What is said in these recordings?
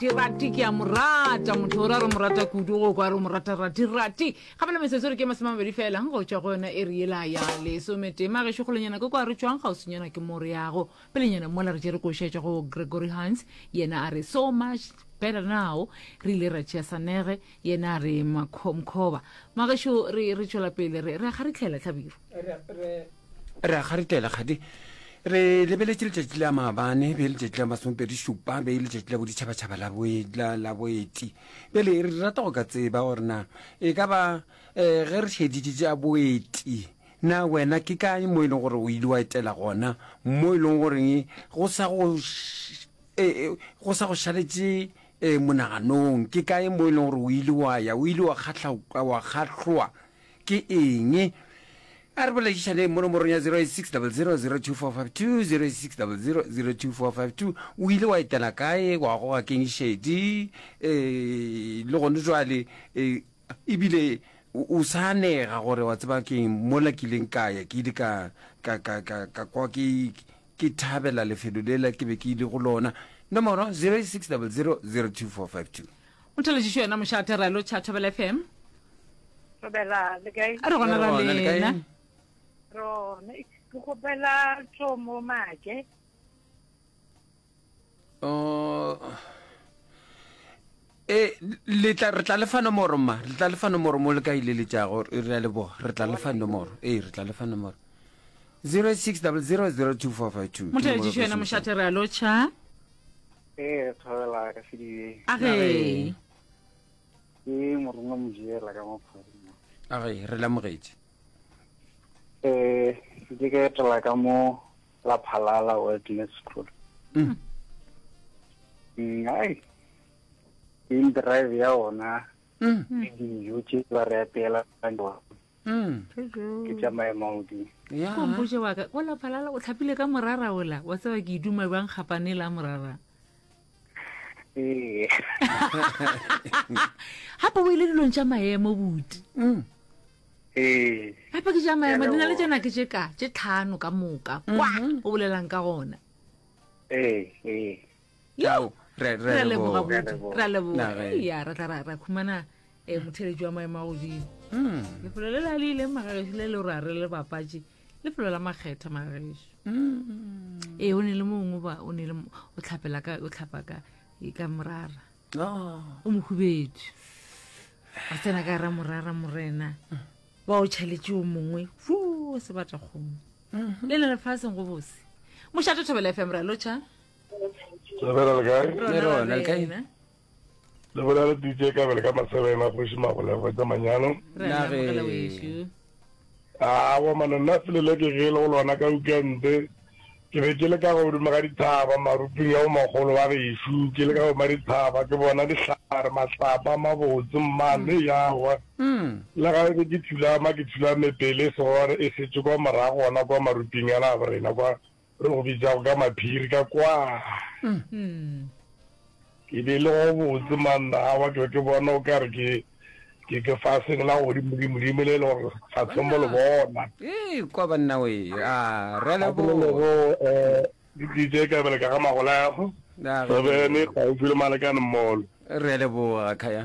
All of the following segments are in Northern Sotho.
Ke rati ke a mo rata motho gore a re mo rata kudu go kwa re o mo rata rati rati gape le metsotso re ke masome a mabedi fela go tšwa go yona e re yela ya lesometema gešo kgolonyana ke kwa re tšwang kgauswinyana ke mo re yago pelenyana mola re tše re košetša go gregory hans yena a re so much better now re ile ra tšea sanege yena a re makho- mkhoba magešo re re tšwela pele re re ga re tlhela tlhabiro re a garetela kgadi re lebeletše letšatši la maabane be e letšatši la masomepedi šupa be e letšatši la boditšhabatšhaba la boeti bjale re rata go ka tseba gore na e ka ba um ge re šeditše tša boeti na wena ke kae mo e leng gore o ile wa etela gona mo e leng goreng go sa go e, e, sa go šaletše um monaganong ke kae mo e leng gore o ile wa ya o ile wa kgatlhoa ke eng? A re boledišaneng mo nomorong ya 08600024520 08600024520 O ile wa etela kae? Wa goga keng šedi? E, le gone jwale e, ebile o sa anega gore wa tseba keng mola ke ileng ka ya ke ile ka ka ka ka ka kwa ke ke thabela lefelo lela ke be ke ile go lona nomoro 08600024520 O theletšišo yena moša a terelo tša Thobela FM. Thobela, le kae? A re gona ra lena. Rona, ke gopela tso mo make. Oh. E, le tla re tla le fa nomoro ma, re tla le fa nomoro mo le ka ile le tša go re ya le bo, re tla le fa nomoro. E, re tla le fa nomoro. 06000245. Mo theletšišo yena moša a terelo tša. ee thabela ka sedibeng a ge ke morongwa mojela ka maphorima a ge re lamogetse eh ke ka etela ka mo la phalala wilderness school Mm. Mm, ai in drive ya ona Mm. le dijo tše ba re apeela ka tsona. Mm. ke tša maemaudi Ya. kompoše wa ka ola phalala o tlhapile ka morara ola wa tseba ke iduma bjang kgapane la morara ee gape o ile dilong tša maemo buti Mm. ee gape ke tša maemo di na le Hello. tšena ke tše ka tše tlhano ka moka kwa o bolelang ka gona ee ee Ao, re- re a leboga leboga. botse re a leboga Na ge- Ei, ya ra tla ra ra khumana um motheletši wa maemo a godimo Mm, lefelo le la le ileng magagešu le le ra re le bapatše lefelo la makgetha magagešu mm. ee o ne le mongwe ba o ne le mo- o tlhapela ka o tlhapa ka e, ka morara Oh, o mohubetše a tsena ka ra morara morena ba o tšhaletše o mongwe fo sebata kgomo le le lefaseng go bose mošate thobela fm ra lotšha le bela le kae le rona le kae le bela le dj ka bele ka masebena kgoši magolego tsa manyalo a wa mane nna selele ke gele go lona ka ukente ke be ke le ka godimo ga dithaba maruping ya omagolo wa gešu ke le ka goma dithaba ke bona dihlare matlapa mabotse mmane mm. yawa mm. le ga ebe ke thulama ke thulame pele segore e setse kwa morago gona kwa maruping ya labo rena kwa Re go bitsago ka maphiri ka kwa. Ke be le go botse manna a wa ke ke bona o ka re ke ke ke fa seng la go di mudi mudi mele le gore fa tsombo le bona. Eh kwa banna we. Ah re le bo. Ke go eh di dije ka bele ka ga magola ya go. Re be ne ka o file malekane mmolo. Re le bo ga khaya.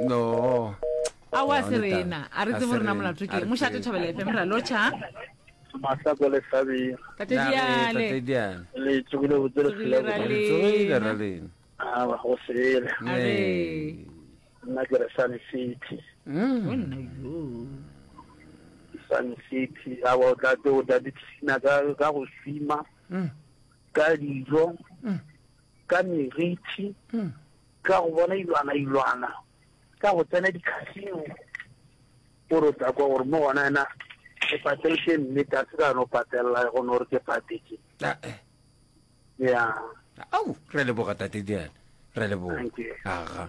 no a wa se rena a re tsebo rena molato ke mošate thabela efe mera locha mahlako le hlabi tatediale le tsogile botse letsogile ra lena a ba go sele nna ke re sun city sun city a ba o tla tse o tla ditisina ka go swima ka dijo ka merithi ka go bona ilwana ilwana ka go tsena dikasino gore o tla kwa gore mo gona ena ke pateletse mme ka se ka no patelela go no re ke patetse Ah, eh. ya au re leboga tate diana re leboga Thank you. aga